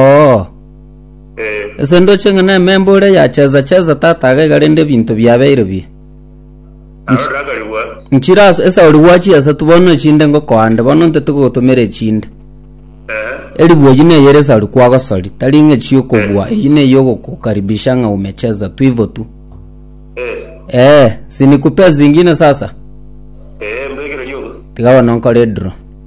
Oo. Ase ndoche ng'a nememba oria yachesa chesa tata agaiga rende ebinto biabeire biye. Nchi- Nchire ase esa ori gwachi esatu bono echinde ngokoande bono ntete gogotomera echinde. Eribu eyi neye ere sari kwagosori tari ng'a chiokobua eyi neye ogokukaribisha ng'a umecheza tu hivyo tu. Eh, sinikupee zingine sasa. Tiga bono nkore draw.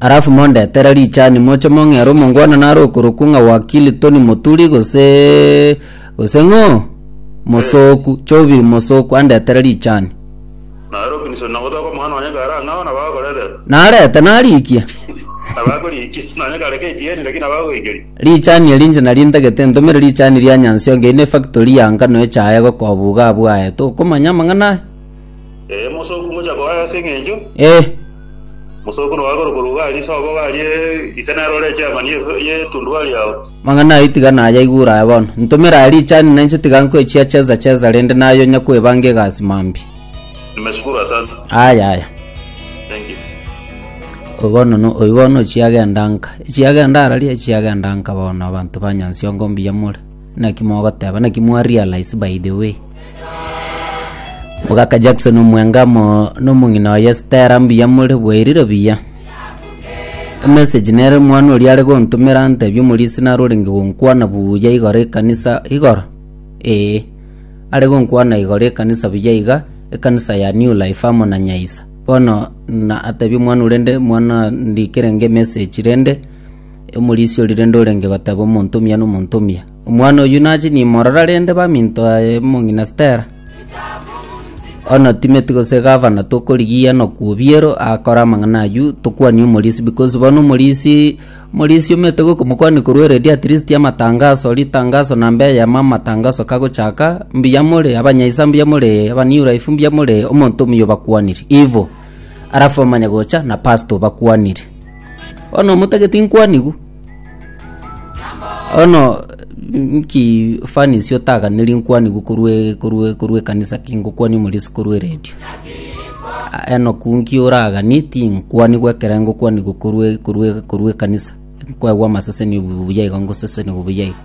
Alafu mondetere richani moche mong'ere omongwana nare okorokwa ng'a wakili Tony Moturi gose gose ng'o mosoku chobi mosoku andetere richani narete narikia richani eri inche nari ntagete ntomere richani ria Nyansiongo eri ne factory ya ngano echaye gokoa buga abwaye tokomanya amang'ana aya. Eh, mosooku ngocha koa ase eng'encho. Eh, Mosooku noa korokwa Rugari, sobo garie ise nerore echairman ye- y'etundubari yao. mang'ana ayio tiga nayaigure aya bono. Ntomera aria richani na inche tiga nkwechia cheza cheza rende naye onya kwebanga egasi mambia. Nimeshukuru, asante. Aya aya. Thank you. Oyo bono no oyo bono chiagenda nka. Chiagenda araria chiagenda nka bono abanto ba Nyansiongo mbuya more. Naki mogoteba naki mwa realize by the way. Mugaka Jackson omwenga mo nomong'ina oye Stella mbuya more bwairire buya. Emessage nere mwana oria are gontumera antebi omorisi nare orenge gonkwana buya igoro ekanisa igoro ee are gonkwana igoro ekanisa buya iga ekanisa ya new life amo na Nyaisa. Bono na atebi omwana ore nde mwana ndikere nge message rende Omorisia oria rende orenge goteba omonto omuya nomonto omuya, Omwana oyio nache nimorora rende baminto baye mong'ina Stella. Bono Timoti gose gavana tokorigia nokw'obiero akore amang'ana ayio tokwanie omorisia because bono omorisia omorisia omanyete gokomokwania korwa already at least amatangaso ritangaso namba eyemo amatangaso kagochaka mbuya more abanyaisa mbuya more aba new life mbuya more omonto omuya obakwaniri ivo alafu omanye gocha na pastor obakwaniri. Bono omotagete inkwanigwe, bono nki fani ase otaganeri nkwanigwe korwa korwa korwa ekanisa ki ngokwani ime risu korwa eredio. Enoku nki oragani tinkwanigwe ekero ngokwanigwe korwa korwa korwa ekanisa, nkwegwa amaseseni obuya iga ngosesenigwe buya iga.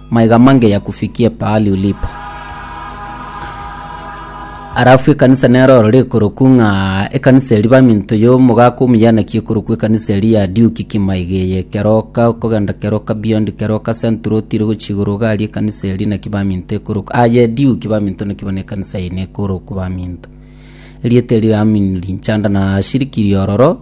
Maiga mange yakufikie pahali ulipo. Arafu ekanisa nero orore ekorokwu ng'a ekanisa eri baminto yo omogaka omuyanaki ekorokwu ekanisa eri ya diuki kimaiga eye keroka okogenda keroka beyond keroka central otire gochia igoro gari ekanisa eri naki baminto ekorokwu aye diuki baminto naki bono ekanisa eye nekorokwu baminto erieta eri ramin linchanda na shiriki riororo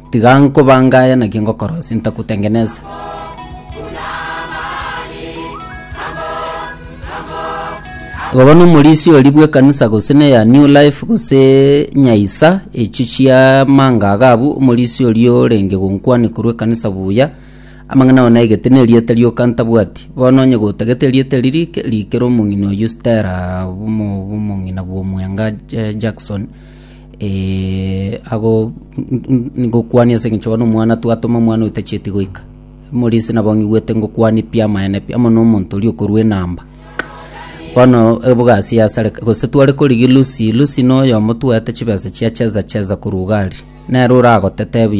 Tiga nkobanga aya naki ngokorosia, ntakutengeneza. Igo bono omorisia oria bw'ekanisa gose neya New Life gose nyaisa echio chia mangaga abwo, omorisia oria orenge gonkwania korwa ekanisa buya, amang'ana ao naigete na erieta rioka ntabwati. Bono onye gotagete erieta eri rike, rikera omong'ina oyio Stella bw'omo- bw'omong'ina bw'omwenga Ja- Jackson, Eh, ago ngokwania ase eng'encho bono omwana twatoma omwana otachieti goika morisi nabo ng'igwete ngokwania pi amaene pi amo nomonto oria okorua enamba bono ebogasi yasareka gose tware korigia lucy lucy noyomo twaete chibesa chia cheza cheza korwa iga aria nere oragotete buya